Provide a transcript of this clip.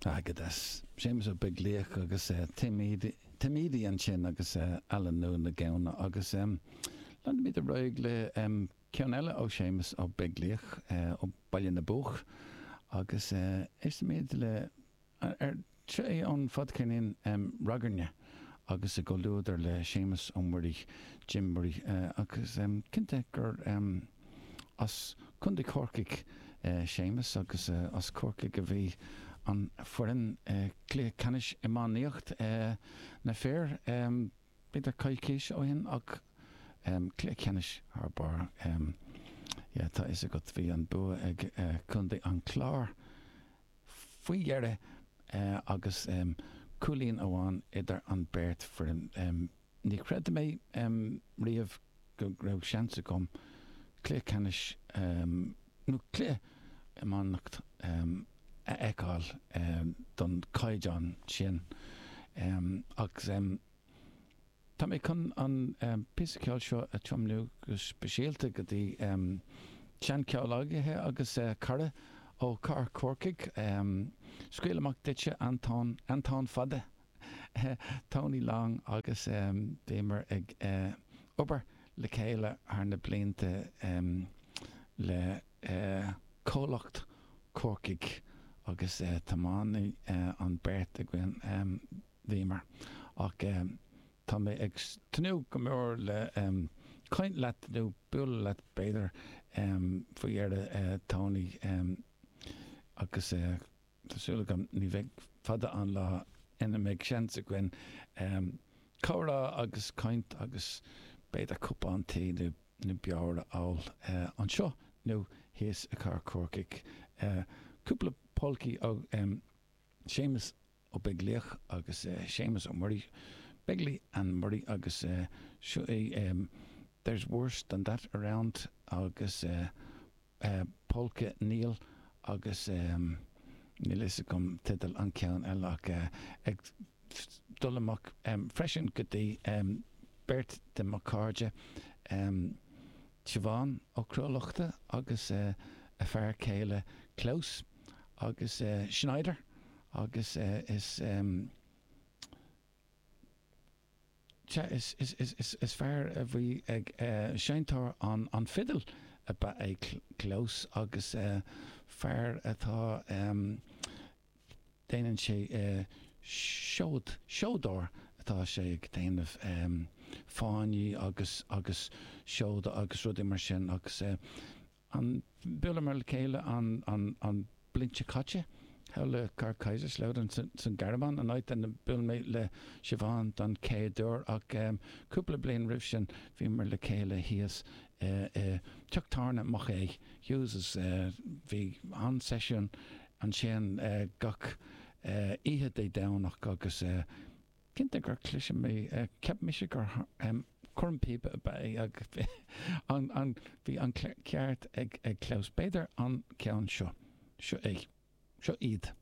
Airgeadas Séamus Ó Beaglaoich agus Tim Edey ansin agus Aililiú na Gamhna agus leanfaimid ar aghaidh le ceann eile ó Séamus Ó Beaglaoich ó Bhaile na bPoc agus éistfimid le Seo é ón fadcheirnín ragairne agus i gcomhluadar le Séamus Ó Muirí, Jim Murray, agus cinnte gur as Contae Chorcaigh Séamus agus as Corcaigh a bhí an foireann i gcluiche ceannais iománaíocht na fir b'fhéidir coicís ó shin ach cluiche ceannais thar barr tá fhios agat bhí an bua ag Contae an Chláir Faoi dheireadh agus cúilín amháin idir an beirt foireann ní chreid mé riamh go raibh seans agam cluiche ceannais nó cluiche iománaíocht a fheiceáil don caighdeán sin. Tá mé chun an píosa ceoil seo a tiomnú go speisialta go dtí seanchomhghleacaí agus cara ó Chathair Chorcaigh. Scaoil amach duitse Antoin, Antoin Fada, Tony Long agus bhíomar ag obair le chéile thar na blianta le comhlacht Corcaigh agus tiománaithe an beirt againn. bhíomar. Ach tá mé ag tnúth go mór le caint leat nó bualadh leat b'fhéidir faoi dheireadh Tony agus tá súil agam ní bheidh fada an lá ina mbeidh seans againn comhrá agus caint agus b'fhéidir cupán tae nó beoir a ól anseo nó thíos i gcathair Chorcaigh. Cúpla polcaí ó Séamus Ó Beaglaoich agus Séamus Ó Muirí, Begley and Murray agus seo é There's worse than that around agus Polka Niall agus níl fhios agam teideal an ceann eile ach ag dul amach freisin go dtí beirt de mo cairde Siobhán Ó Cruadhlachta agus a fear céile Klaus. agus Schneider agus is is fear a bhí ag seinnteoir an fidil ab ea Klaus agus fear atá déanann sé seod seodóir atá sé ag déanamh fáinní agus agus seoda agus rudaí mar sin agus Bhuaileamar le chéile an bhliain seo caite, thall le Carl Kaiserslautern san Ghearmáin, an áit inar bhuail mé le Siobhán don chéad uair, ach cúpla bliain roimh sin bhíomar le chéile thíos i dTeach Tábhairne Mhic Aodha Hughes. Bhí an-seisiún ansin gach oíche Dé Domhnaigh agus. Cinnte gur cliseadh mé. Cheap mise gur cornphíopa ab ea é ach bhí an ceart ag Klaus. B'fhéidir an ceann seo. Seo é. Seo iad.